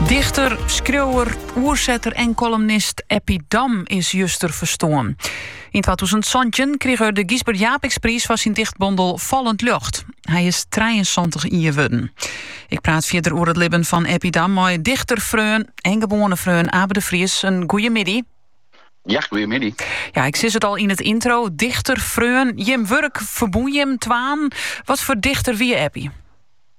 Dichter, skriuwer, oersetter en kolumnist Eppie Dam is juster ferstoarn. Yn 2017 krige er de Gysbert Japicxpriis foar syn dichtbondel Fallend Ljocht. Hy is 73 jier wurden. Ik praat fierder oer it libben fan Eppie Dam mei dichterfreon en gewoane freon Abe de Vries. In goeie middei. Ja, goeiemiddei. Ja, ik sei it al yn it yntro. Dichter, freon, jim wurk ferbûn jim twaen. Wat foar dichter wie Eppie?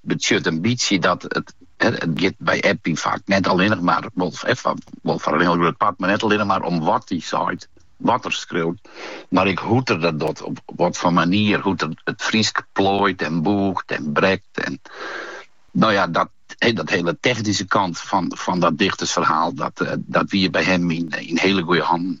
betsjut in bytsje dat it giet by Eppie faak net allinnich mar, wol foar in hiel grut part, mar net allinnich mar om wat er seit, wat er skriuwt, mar ek hoe't er dat docht, op wat foar manier, hoe't er it Frysk plooit en bûcht en brekt en no ja, dat hiele technyske kant fan dat dichtersferhaal, dat wie by him yn hiele goede hannen.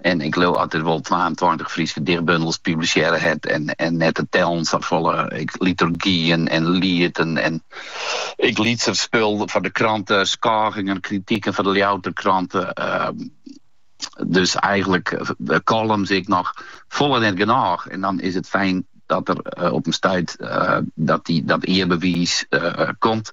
En ik leau dat er wol twaentweintich Fryske dichtbundels publisearre hat en, en net te tellen safolle liturgyen en lieten en ek lytser spul foar de krante, skôgingen, kritiken foar de Ljouwerter Krante. Ehm, dus eigenlik eh, kollums ek, noch folle net genôch. En dan is it fijn dat der eh, op in stuit eh, dat dy dat earbewiis eh, komt.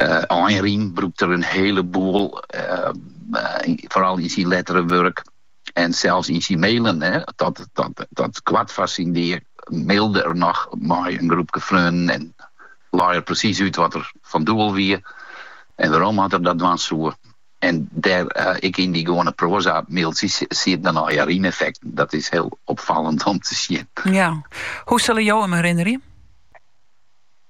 Einrym brûkt er in hieleboel, foaral yn syn lettere wurk en sels yn syn mailen. Tot koart foar syn dea mailde er noch mei in groepke freonen en lei er presys út wat er fan doel wie en wêrom oft er dat dwaan soe. En dêr, ek yn dy gewoane proaza-mailtsjes, sieten dan einrymeffekten. Dat is hiel opfallend om te sjen. Ja. Hoe sille jo him herinnerje?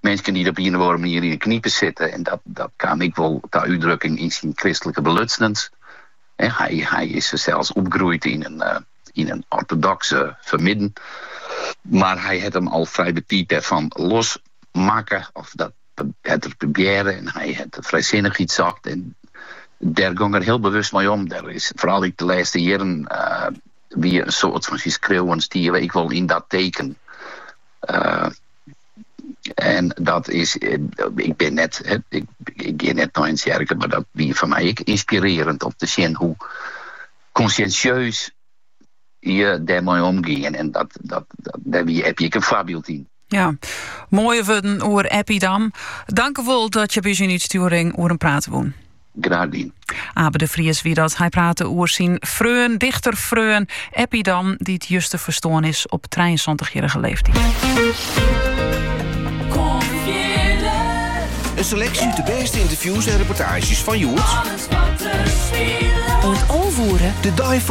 minsken dy't op ien of oare manier yn 'e knipe sitte. En dat, dat kaam ek wol ta útdrukking yn syn kristlike belutsnens. Hy, hy is sels opgroeid yn in, eh, yn in ortodoks fermidden. Mar hy hat him al frij betiid dêrfan los makke, of dat hat er probearre, en hy hat frijsinnichheid socht. En dêr gong er hiel bewust mei om. Der is foaral ek de lêste jierren eh, wie in soad fan syn skriuwen stie ek wol yn dat teken. Eh, En dat is, ik bin net, ik gean net nei in tsjerke, mar dat wie foar my ek ynspirerend om te sjen hoe konsjinsjeus je dêrmei omgean. En dat, dat, dêr wie Eppie ek in foarbyld yn. Ja, moaie wurden oer Eppie Dam. Tankewol dat je by ús yn 'e útstjoering oer him prate woene. Graach dien. Abe de Vries wie dat. Hy prate oer syn freon, dichterfreon Eppie Dam, dy't juster ferstoarn is op trijeënsantichjierrige leeftyd. Een selectie uit de beste interviews en reportages fan hjoed. Alles wat te spielen. Wordt de